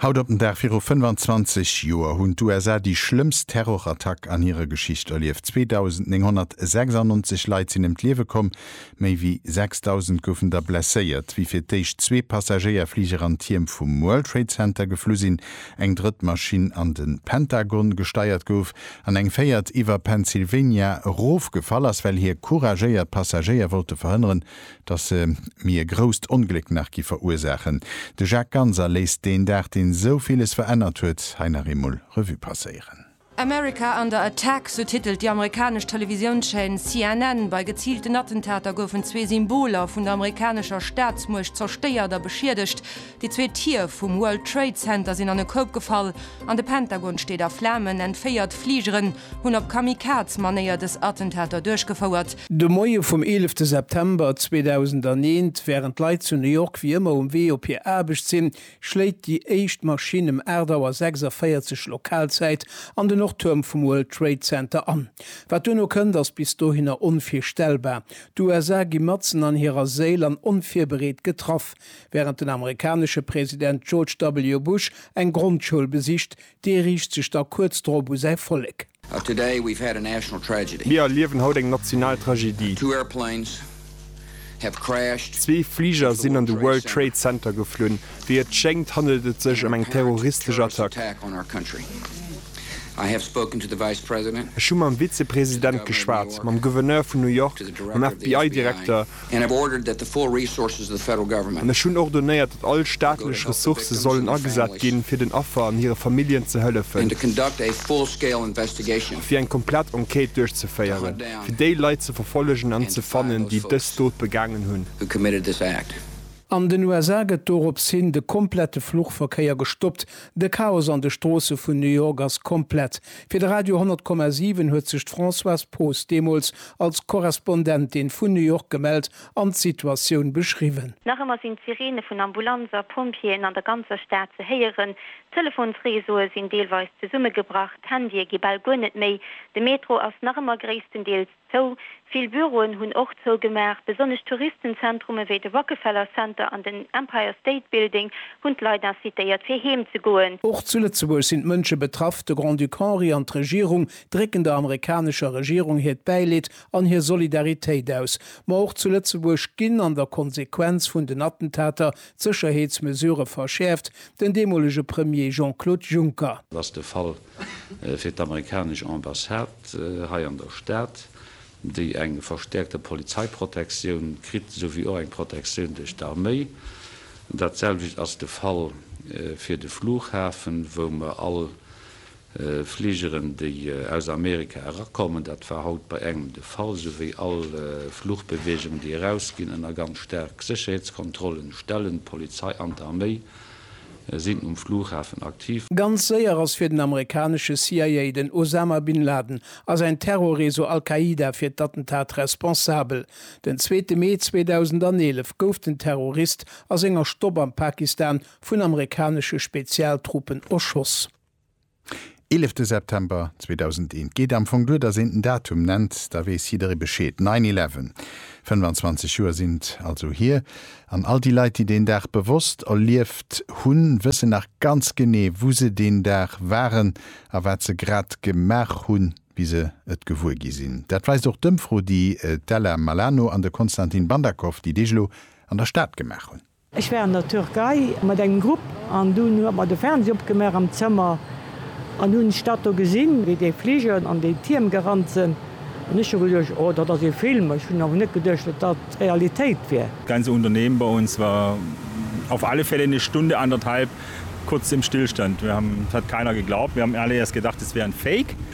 Haut op den Dag viru 25 Joer hunn d'USA déi schlëmmst Terrorattack an hirer Geschicht erlieft. 2.996 Leit sinn ëm d'Liewe komm, méi wéi 6.000 goufen da blesséiert, wéi fir d'éischt zwee Passagéierfliger an d'Tierm vum World Trade Center geflu sinn, eng drëtt Maschinn an de Pentagon gesteiert gouf an eng véiert iwwer Pennsylvania erofgefall ass, well hir couragéiert Passagéier wollte verhënneren, datt se mir e grousst Ongléck nach gi verursaachen. De Jacques Ganser léisst deen Dag, deen esou villes verännert huet, hei nach eemol Revue passéieren. America under attack, sou titelt déi amerikanesch Televisiounschaîne CNN. Bei geziilten Attentater goufen zwee Symboler vun der amerikanescher Staatsmuecht zerstéiert a beschiedegt. Déi zwee Tier vum World Trade Center sinn an e Koup gefall an de Pentagon steet a Flamen. Enn 4 Fligeren hunn op Kamikaze-Manéier dës Attentater duerchgefouert. De Moie vum eelefte September 2001, wärend d'Leit zu New York wéi ëmmer um Wee op hir Aarbecht sinn, schléit déi éischt Maschinn ëm 8 Auer 46 Lokalzäit an de Nordtuerm vum World Trade Center an. Wat duerno kënnt, ass bis dohinner onvirstellbar. D'USA gi matzen an hirer Séil an onvirbereet getraff. Wärend den amerikanesche President George W. Bush eng Grondschoul besicht, dee riicht sech da kuerz drop u säi Vollek. Mir erliewen haut eng national Tragedie. Zwee Fliger sinn an de World Trade Center geflunn. Wéi et schéngt, handelt et sech ëm eng terroristesch Attack. Ech hu mam Vizepresident geschwat, mam Gouverneur vun New York, mam FBI-Direkter And have ordered that the full resources of the Federal Government. An ech hunn ordonéiert, datt all staatlech Ressourcë sollen agesat ginn, fir den Affer an hire Familljen ze hëllefen. And to conduct a full-scale investigation. A fir eng komplett Enquête duerchzeféieren, fir déi Leit ze verfollegen an ze fannen, déi dës Dot begaangen hunn. Who committed this act. An den USA gëtt dorops hin de komplette Fluchverkéier gestoppt. De Chaos an de Stroosse vun New York ass komplett. Fir de Radio 100 Komma 7 huet sech d'Françoise Poos deemools als Korrespondentin vun New York gemellt an d'Situatioun beschriwwen. Nach ëmmer sinn d'Sireene vun Ambulanzer, Pompjeeën an der ganzer Stad ze héieren. D'Telefonsreseaue sinn deelweis zesummegebrach, d'Handye gi bal guer net méi, de Metro ass nach ëmmer gréisstendeels. zou. Vill Büroen hunn och zougemaach. Besonnesch Touristenzentrume wéi de Rockefeller Center an den Empire State Building hunn d'Leit incitéiert, fir heem ze goen. Och zu Lëtzebuerg sinn d'Mënsche betraff. De Grand-Duc Henri an d'Regierung drécken der amerikanescher Regierung hiert Bäileed an hir Solidaritéit aus. Ma och zu Lëtzebuerg ginn an der Konsequenz vun den Attentater d'Sécherheetsmesurë verschäerft. Den deemolege Premier Jean-Claude Juncker. Ass de Fall fir d'amerikanesch Ambassade hei an der Stad, déi eng verstäerkte Polizeiprotektioun kritt, esouwéi och eng Protektioun duerch d'Arméi. Dat selwecht ass de Fall fir de Flughafen, wou mer all Fligeren, déi aus Amerika erakommen, dat war haut bei engem de Fall, esouwéi all Flugbeweegung, déi erausginn, ënner ganz staark Sécherheetskontrollen stellen, d'Polizei an d'Arméi. sinn um Flughafen aktiv. Ganz séier ass fir den amerikanesche CIA. Den Osama Bin Laden a säin Terrorreseau Al-Qaida fir d'Attentat responsabel. Den zweete Mee 2011 gouf den Terrorist a senger Stopp am Pakistan vun amerikanesche Spezialtruppen erschoss. Eelefte September 2001, et geet am Fong duer, datt een den Datum nennt, da weess jidderee Bescheed, Nine Eleven. 25 Joer sinn et also hier, an all déi Leit, déi deen Dag bewosst erlieft hunn, wëssen nach ganz genee, wou se deen Dag waren a wat se grad gemaach hunn, wéi se et gewuer gi sinn. Dat weist och d'Ëmfro, déi d'Ella Malano an de Konstantin Bandakow déi Deeg elo an der Stad gemaach hunn. Ech war an der Türkei mat engem Grupp an dunn hu mer de Fernseh opgemaach am Zëmmer an hunn d'Stad do gesinn, wéi déi Fliger an déi Tierm gerannt sinn an ech hu geduecht, oh dat ass ee Film. Ech hunn awer net geduecht, datt dat d'Realitéit wier. Ganze Unternehmen bei uns war auf alle Fälle eine Stunde anderthalb kurz im Stillstand. Wir haben, es hat keiner geglaubt, wir haben alle erst gedacht, es wäre ein Fake.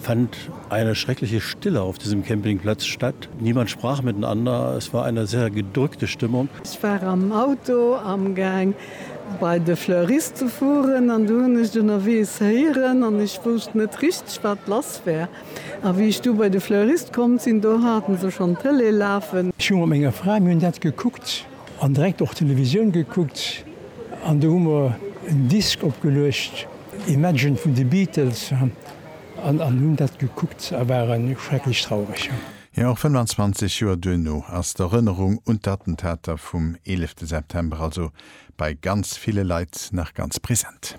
fand eine schreckliche Stille auf diesem Campingplatz statt. Niemand sprach miteinander. Es war eine sehr gedrückte Stimmung. Ech war am Auto amgaang bei de Fleurist ze fueren an du hunn ech ënnerweegs héieren an ech wousst net richteg wat lass war. A wéi ech du bei de Fleurist komm sinn, do haten se schonn d'Tëlee lafen. Ech hu mat menger Fra, mir hunn dat gekuckt an direkt och Televisioun gekuckt an do hu mer en Disk opgeluecht, Imagine vun de Beatles. An hunn dat gekuckt a ware schrecklech traureg. Jo, och 25 Joer duerno ass d'Erënnerung un d'Attentater vum 11 September also bei ganz ville Leit nach ganz present.